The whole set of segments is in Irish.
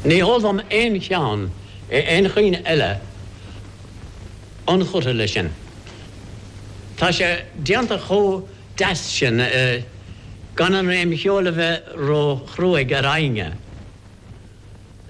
Ní heol dom aon cheann in aon chaoineadh eile ionchurtha leis sin. Tá sé déanta chomh deas sin gan an réim cheoil a bheith ró-chruaigh ar éinne.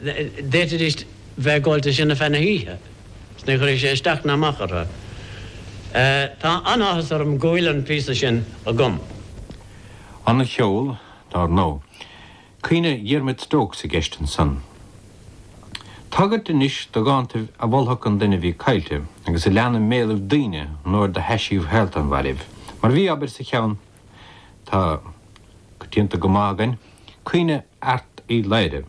D'fhéadfaidíst bheith ag gabháil de sin ar feadh na hoíche 's ní chuirfeadh sé isteach ná amach orthu. Tá an-áthas orm go bhfuil an píosa sin agam. An-cheol, dar ndóigh. Caoineadh Dhiarmaid Stokes i gceist ansan. Tagairt anois do dhántaibh a mholfadh an duine a bhí caillte agus a lean i mbéalaibh daoine an uair do thaisibh shaolta an mhairbh, mar a bhí, abair, sa cheann atá coitianta go maith againn, Caoineadh Airt Uí Laoghaire.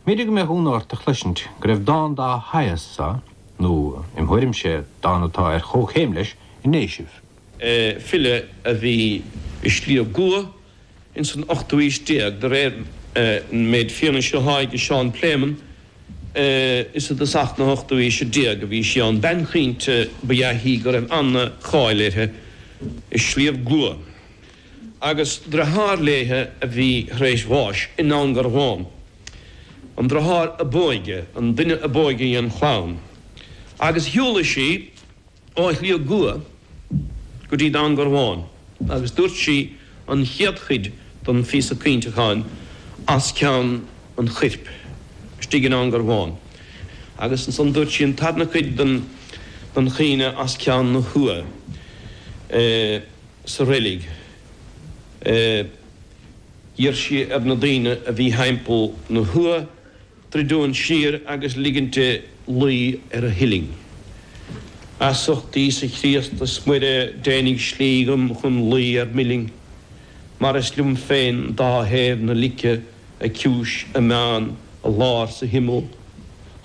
B'fhéidir go mbeadh ionadh ort a chloisint go raibh dán dá shaghas sa, nó, im thuairimse, dán atá ar chomhchéim leis, i nDéisibh. file a bhí i Sliabh gCua ins an ochtú aois déag, de réir an méid fianaise athá age Seán Pléimeann, is i dtosach na hochtú aoise déag a bhí sí ann. Bean chaointe ba ea í go raibh an-cháil uirthi i Sliabh gCua, agus driotháir léithe a bhí tar éis bháis i nDún Garbhán, an driotháir a b'óige, an duine a b'óige dhen chlann, agus shiúlaigh sí. ó Shliabh gCua go dtí Dún Garbhán agus dúirt sí an chéad chuid den phíosa caointeacháin as ceann an choirp istigh i nDún Garbhán agus ansan dúirt sí an tarna cuid den chaoineadh as ceann na huagha sa reilig. D'iarr sí ar na daoine a bhí thimpeall na huagha druidint siar agus ligint di luí ar a huillinn. As ucht Íosa Críost is Muire deinidh slí dhom chun luí ar m'uillinn, mar is liom féin dá thaobh na lice, a ciumhais, a meán, a lár 's a himeall.